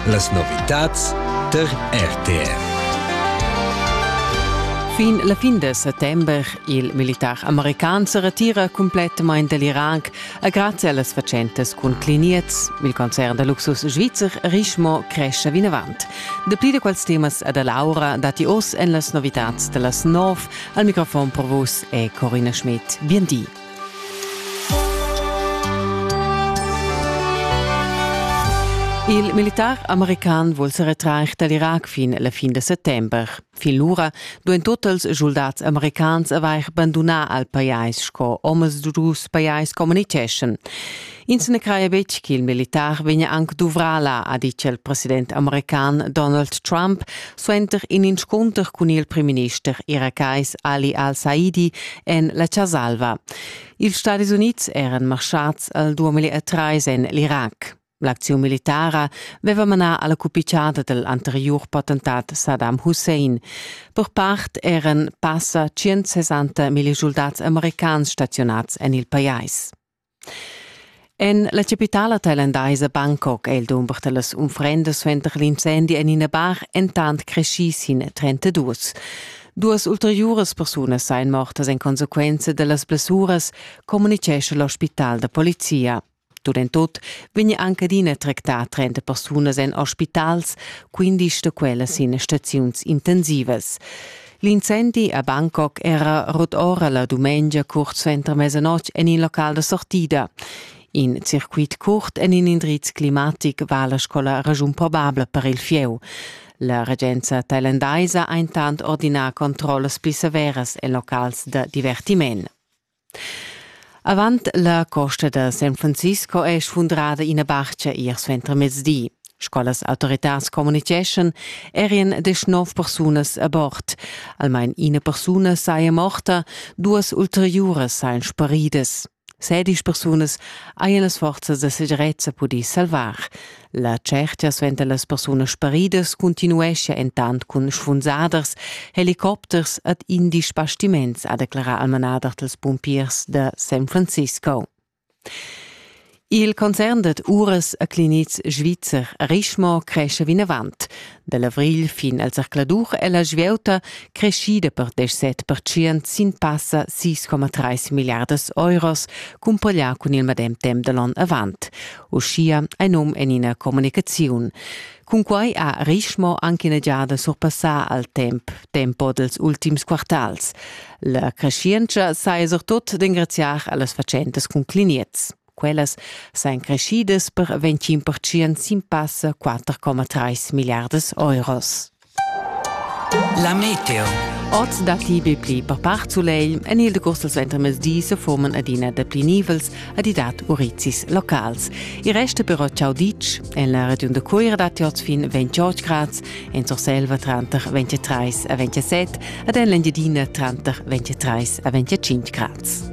Las novitads tar RTR. Fin la fin da settember il militar american se retira complettamain dall'Iran e grazie allas fatschentas cun cliniets. Il concern da luxus svizzer Richemont cresce vinavant. Dapli da quels temas e da Laura dati oz en las novitads da las 9. Al microfon per vus è Corina Schmidt. Bien di. Il militar american vul se retrair dall'Irac fin la fin de settember. Fin lura duein totals soldats americans avair bandunà al pajais sco omas dus pajais communiceschan. Ins na craja betg ch'il militar vegnia anc duvrà là, ha ditg il president american Donald Trump suenter in inscunter cun il primminister irakais Ali al-Saidi en la Chasa-alva. Ils Stadis Unids eran marschads al 2013 en l'Irac. L'acziun militara veva manà alla cupichada del anteriur potentat Saddam Hussein. Per part eran passa 160 milli soldats americans stazionats en il pajais. En la capitala thailandaisa Bangkok è il dumber da las unfrendas suenter l'incendi en ina bar entant creschì sin 32. Duas ulteriuras persunas sain mortas en consequenza da las blessuras, communitgescha l'ospital da polizia. Tut en tut vegn anc adina tractà 30 persunas en ospitals, 15 da quellas sin staziuns intensivas. L'incendi a Bangkok era rut ora la dumengia curt suenter mesanotg en il local da sortida. In circuit curt en in indriz climatic va la scola ragiun probabla per il fieu. La regenza thailandaisa ha intant ordinà controllas pli severas e locals da divertiment. Avant la costa da San Francisco è sfundrada ina barcha ier suentermezdi. Sco las autoritads communitgeschan, erien desch nov persunas a bord. Almain ina persuna saja morta, duas ulteriuras sajan sparidas. Sedisch persunas hajan las forzas da segirezza pudì salvar, La tschertia suenter las persunas sparidas continuescha entant cun sfunsaders, helicopters ed indies bastiments, ha declarà al manader dals pumpiers da San Francisco. Il concern dad uras a clinics svizzer Richemont cresce vinavant. Dal avrigl fin al zercladur è la svieuta creschida per deschset pertschient sin passa 6,3 milliardas euros, cumpaglià cun il medem temp da l'onn avant. Uschia è num en ina communicaziun. Cunquai ha Richmo anche ina giada surpassà al temp tempo dels ultims quartals. La creschientscha saja surtut d'engraziar a las fatschentas cun cliniez. Quellas sain creschidas per 25% sin passa 4,3 milliardas euros. La Meteo. Oz datti be pli per part sulegl. En il decurs dal suentermezdi se forman adina dapli nivels ed i dat urizis locals. Il rest però ciao ditg. En la regiun da Cuira datti oz fin 28 grad, en Surselva tranter 23 e 27 ed en l'Engiadina tranter 23 e 25 grad.